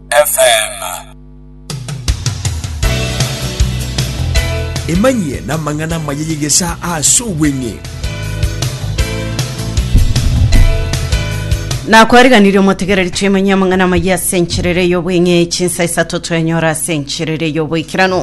FM. Emanyie namang'ana amaya y'egesaa ase obweng'e. nakwariganirie omotegereri twemanyie amang'ana amaya ase encherere y'obweng'e chinsa isato twenyora ase encherere y'oboikeranu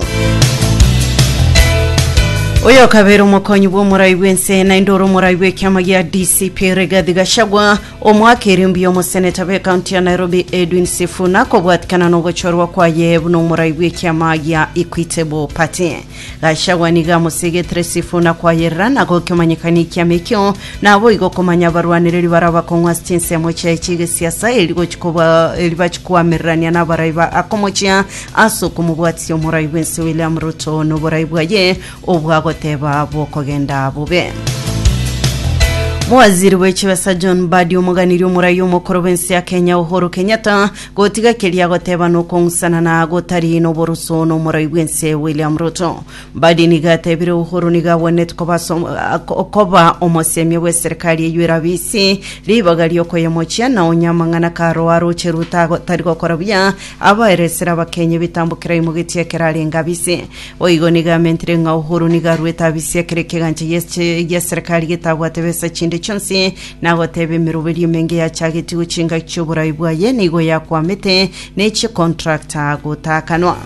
oyo okabera omokonyi bw'omorai bw'ense naende ore omorai bw'ekiama gia dcp rigathi gachagua Omwaka erio mbuya omoseneta bw'ekaunti ya Nairobi Edwin Sifuna kobwatikana nogochorwa kwaye buna omorai bw'ekiama gia Equitable Party. Gachagua nigo amosegetire Sifuna kwayerera na gokemanyekania ekiama ekio, naboigo komanya abarwanereri baria bakong'u ase chinsemo chiaye chi'egesiasa eri gochi koba eri bachi koamererania nabarai ba akomochia ase okomobwatisia omorai bw'ense William Ruto noborai bwaye obwagoteba bw'okogenda bobe. Mowaziri bwe chibesa John Mbadi omoganirie omoraia omokoro bwensi ya Kenya Uhuru Kenyatta gotiga keria agoteba na okong'usanana gotari noborusu nomorai bwense William Ruto. Mbadi nigo atebire Uhuru nigo agwenereti koba ase om- a- ko- koba omosemia bwe serikali eyio erabe isi ribaga riokoyemochia na onye amang'ana karo aroche Ruto agotari gokora buya abaeresire Abakenya ebitambo kera imogetie ekero arenge abise. Boigo nigo amentire ng'a Uhuru nigo aruete abisia kera ekegancha giache giaserekari getabwate besa chinde chionsi, na agoteba emeroberi emenge yachagetie gochingaki chioborai bwaye nigo yakwamete, na echie contract gotaakanwa.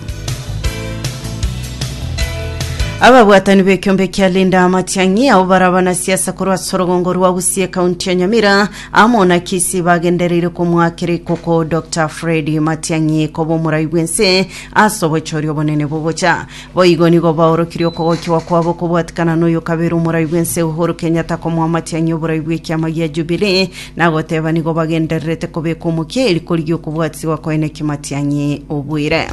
Ababwatani b'ekiombe kia Linda Matiang'i abo bare abanasiasa korwa ase orogongo rwa Gusii ekaunti ya Nyamira amo na Kisii bagendereire komoakera ikoko Dr Fred Matiang'i koba omorai bw'ense Ase obochori obonene bogocha, boigo nigo baorokirie okogokiwa kwabo kobwatikana noyo kabere omorai bw'ense Uhuru Kenyatta komoamatia ng'a oborai bw'ekiama gia Jubilee na goteba nigo bagendererete kobeka omokia eri korigia okobwatisigwa koene kimatiang'i obwire.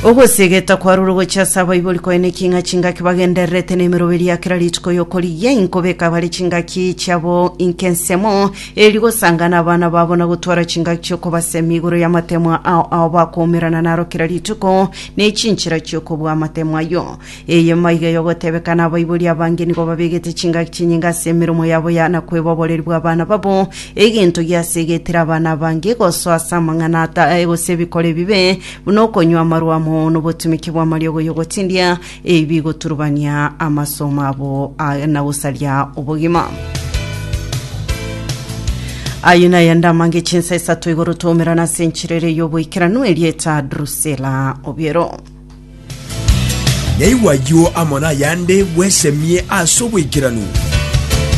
Ogosegeta kwarure gochia ase abaibori koene king'a chingaki bagendererete nemeroberi ya kera rituko yokorigia inkobeka bare chingaki chiabo inke ensemo Erio gosangana abana babo na gotwara chingaki chi'okobasemi igoro y'amatemwa ao ao bakoumerana naro kera rituko, ne chinchera chi'okobua amatemwa ayio. Eye maiga y'ogotebekana abaibori abange nigo babegete chingaki chinyinga ase emeromo yabo ya na kweba oboreri bw'abana babo, egento gi'ase egetera abana abange gosoa ase amang'ana ata, gose ebikora ebibe, buna okonywa amarwa amo nobotumiki bw'amariogo y'ogotindia, Ebi bigoturubania amasomo abo na gosaria obogima. Ayio naye ndamange chinsa isato igoro tomerana ase enchera ere y'oboikeranu erieta Drusela Obiero. Naigwa ayio amo nayande bwesemie ase oboikeranu.